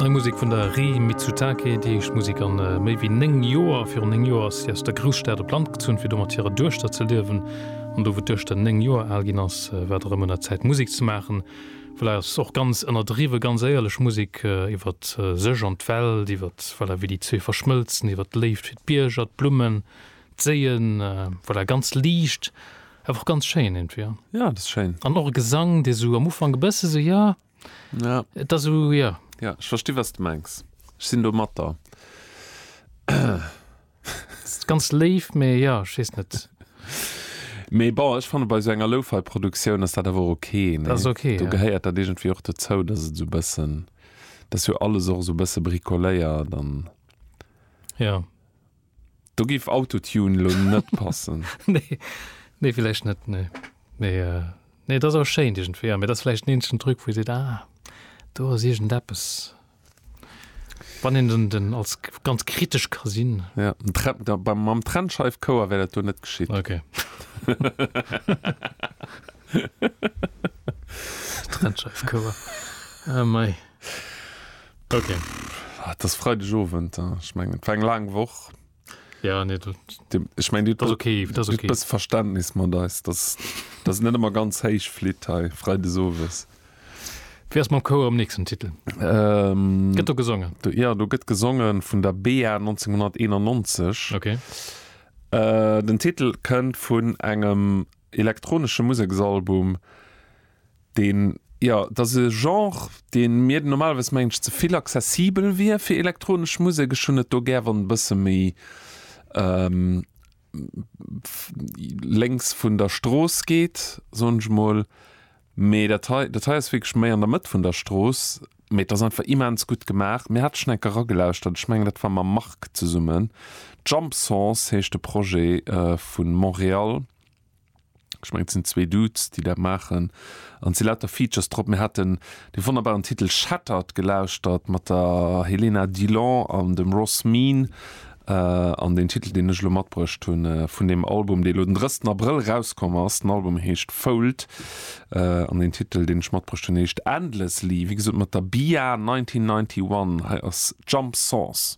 Nei Musek vun der Rii Mitsutake, déi éischt Musek an méi wéi 9 Joer. Virun 9 Joer ass si aus der Grousstad op d'Land gezunn, fir do mat hirer Duechter ze liewen. An do, wou d'Duechter 9 Joer al ginn ass, war et erëm un der Zäit, Musek ze maachen. Voilà, et ass och ganz ënnerdriwwen, ganz éierlech Musek iwwer sech an d'Welt, iwwer, voilà, wéi déi zwee verschmëlzen, iwwer d'Léift fir d'Bierger, d'Blummen, D'Séien, voilà, ganz liicht, awer och ganz schéin iergendwéi, ja. Ja, dat ass schéin. An och e Gesang, dee sou am Ufank e bësse sou, ja, et ass sou, ja. Ja, ech versti wat s de mengs. Ech sinn domatter. Ass ganz léif, mee jo, ech weess net. Mee bon, ech fanne bei sou enger Lo-Fi-Produktioun ass dat awer och ok, nee? Dat ass ok, ja. Do gehéiert dat iergendwéi och dozou, dass et sou bëssen, dass jo alles och sou bësse bricoléiert an. Jo. Do giff Autotune lo net passen. Nee, nee villäicht net, nee. Mee, äh, nee et ass awer schéint iergendwéi, ja. Mee et ass villäicht den eenzegen Truc wou ee seet, ah, do ass iergendeppes, wann een den, den als ganz kritesch ka sinn. Ja, den Tren, da beim, mam Trennscheifkouer wär dat do net geschitt. Ok. Trennscheifkouer, ah mei. Okay. Ah, das Freitag Owend, ja. ich mengen et war eng laang Woch. Ja, nee, dat, Dem, ich mein, du, das ist okay, das ist okay. das Verständnis mat eis, dass das net immer ganz héich flitt hei Freitag Owes. Wie ass mam Chouer um nächsten Titel? Ähm, Gëtt do gesongen? du, ja, du gëtt gesongen vun der BA 1991. Okay. Äh, den Titel kënnt vun engem elektronesche Museksalbum, deen, jo, et ass e Genre, dee mir normalerweis mengen ech ze vill accessibel wier fir elektronesch Musek. Ech hunn et do gär wann e bësse méi lénks vun der Strooss geet, soen ech emol, mee dat hei, dat hei ass wierklech méi an der Mëtt vun der Strooss, mee et ass einfach immens gutt gemaach. Mir hate schonn eng Kéier eragelauschtert, ech mengen dat war mam Marc zesummen, Jump Sons heescht de Projet vu Montréal, Ech mengen et sinn zwee Dudes déi dat maachen an et si lauter Features drop. Mir haten dee wonnerbaren Titel Shattered gelauschtert mat der Helena Dilon an dem Ross Mean an deen Titel deen ech elo matbruecht hunn vun deem Album dee elo den drëssten Abrëll erauskomm ass. Den Album heescht Fold an deen Titel deen ech matbruecht hunn heescht Endlessly, wéi gesot mat der Bia 1991. Hei ass Jump Sons.